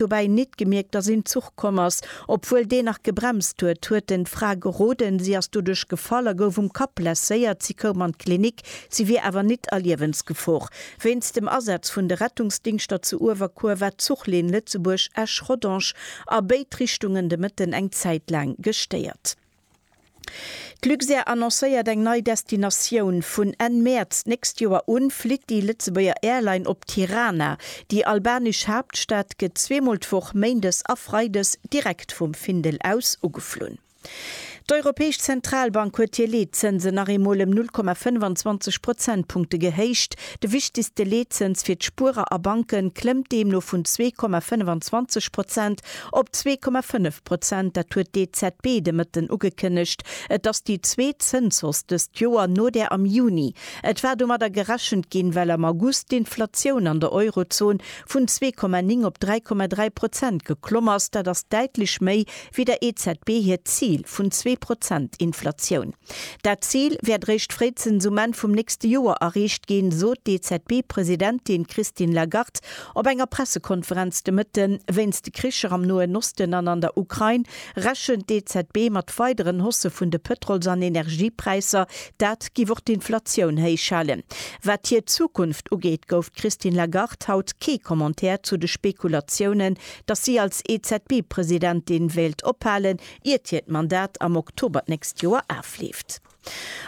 dobäi nit gemierkt, dass een Zuch komm ass. Obwuel deen nach gebremst huet, huet en d'Fra geroden, si ass doduerch gefall a gouf um Kapp blesséiert. Si koum an d'Klinik, si wier awer nit a Liewensgefor. Wéinst dem Asaz vun de Rettungsdingschter zu Uewerkuer war d'Zuchlinn Lëtzebuerg-Esch-Rodange a béid Richtungen de Mëtten eng Zäit laang gestéiert. D'Luxair annoncéiert eng nei Destinatioun, Vun Enn Mäerz d'nächst Joer u flitt déi Lëtzebuerger Airline op Tirana. Déi albanesch Haaptstad gëtt zweemol d'Woch, méindes a freides, direkt vum Findel aus ugeflunn. D'Europäesch Zentralbank huet hir Leetzënsen nach eemol ëm 0,25 Prozentpunkte gehéicht. De wichtegste Leetzëns fir d'Spuerer a Banken klëmmt deemno vun 2,25 Prozent op 2,5 Prozent, dat huet d'EZB de Mëtten ugekënnegt. Et ass déi zweet Zënshausse dëst Joer, no där am Juni. Et war domadder gerechent ginn, well am August d'Inflatioun an der Eurozon vun zwee Komma néng op dräi Komma dräi Prozent geklomm ass. Dat ass däitlech méi wéi der EZB hiert Zil vun zwee Prozent Inflatioun. Dat Zil wäert réischt fréizens um Enn vum nächste Joer erreecht ginn, sot d'EZB-Presidentin Christine Lagarde Op enger Pressekonferenz de Mëtte wéinst de Kricher am Noen Osten an an der Ukrain rechent d'EZB mat weideren Haussë vun de Pëtrols an Energiepräisser. Dat géif och d'Inflatioun héich halen. Wat hir Zukunft ugeet, gouf d'Christine Lagarde haut kee Commentaire zu de Spekulatiounen, datt si als EZB-Presidentin wéilt ophalen, iert hiert Mandat am Oktober d'nächst Joer afleeft.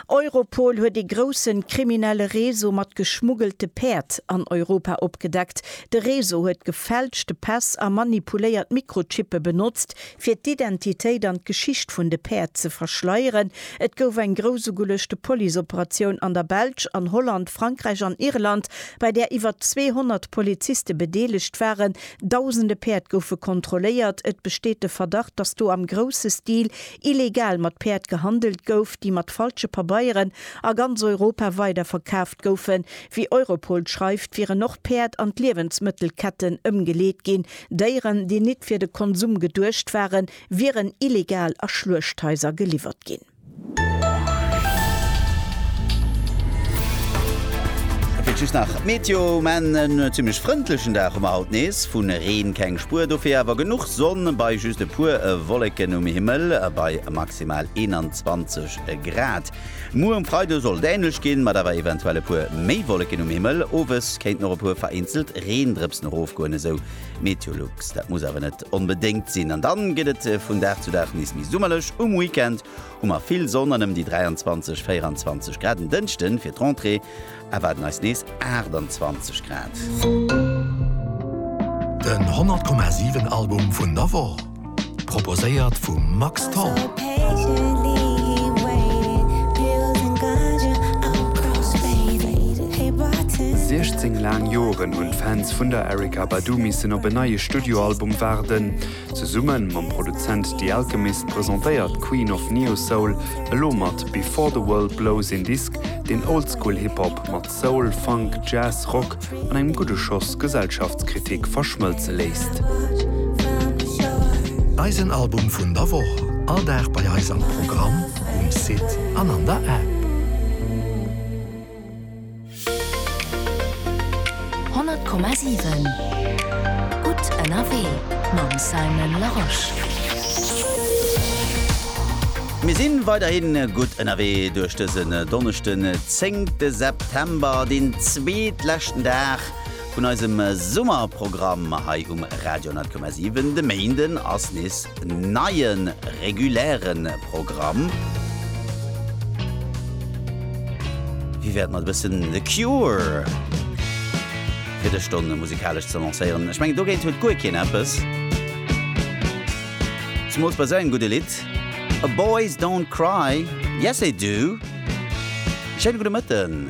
Europol huet ee grousse kriminelle Réseau mat geschmuggelte Päerd an Europa opgedeckt. De Réseau huet gefälschte Päss a manipuléiert Mikrochippe benotzt, fir d'Identitéit an d'Geschicht vun de Päerd ze verschleieren. Et gouf eng grousugeluechte Policeoperatioun an der Belsch, an Holland, Frankräich an Irland, bei där iwwer 200 Poliziste bedeelegt waren. Dausende Päerd goufe kontrolléiert. Et besteet de Verdacht, datt do am grousse Stil illegal mat Päerd gehandelt gouf, déi mat falsche Pabeieren a ganz Europa weiderverkaaft goufen. Wéi Europol schreift, wieren och Päerd an d'Liewensmëttelketten ëmgeleet ginn. Déieren, déi nit fir de Konsum geduecht waren, wieren illegal a Schluechthaiser geliwwert ginn. Fir just nach d'Meteo, mä en zimlech frëndlechen Dag hu mer haut nees, vu Reen keng Spuer, dofir awer genuch. Sonn bei just e puer Wolleken um Himmel bei maximal 21 Grad. Muer um Freide sollt et änlech ginn, mat awer eventuell e puer méi Wolleken um Himmel. Owes kéinten och e puer vereenzelt Reendrëpsen erofgoen, esou Meteolux. Dat muss awer net onbedéngt sinn an dann gëtt et vun Dag zu Dag nees méi summerlech. Um Weekend hu mer vill Sonn an ëm déi 23, 24 Grad. En Dënschde fir d'Rentrée Erwaarden eis nees 28 Grad. Den 100,7 Album vun der Woch, proposéiert vum Max Tholl. Siechzéng laang Joren hunn d'Fans vun der Erykah Badu missen op en neie Studioalbum waarden. Zesumme mam Produzent The Alchemist presentéiert d'Queen of Neo-Soul elo mat Before the World Blows een Disk, deen Oldschool Hip Hop mat Soul, Funk, Jazz, Rock an engem gudde Schoss Gesellschaftskritik verschmëlze léisst. Eisen Album vun der Woch, all Dag bei eis am Programm, um Site an an der App. Honnert Komma siwen, gutt ënnerwee mam Simon Larosche. Mir si weiderhi gutt ënnerwee duerch dësen Donneschden, zéngte September, deen zweetleschten Dag vun eisem Summerprogramm hei um Radio 10,7. De Méinden ass nees Neie reguläre Programm. Wéi wär et mat e bëssen The Cure fir dës Stonn musikalesch ze lancéieren? Ech mengen, dogéint huet guer keen eppes. Zemools bei esou engem gudde Lidd. A Boys don't cry, yes they do. Schéine gudde Mëtten.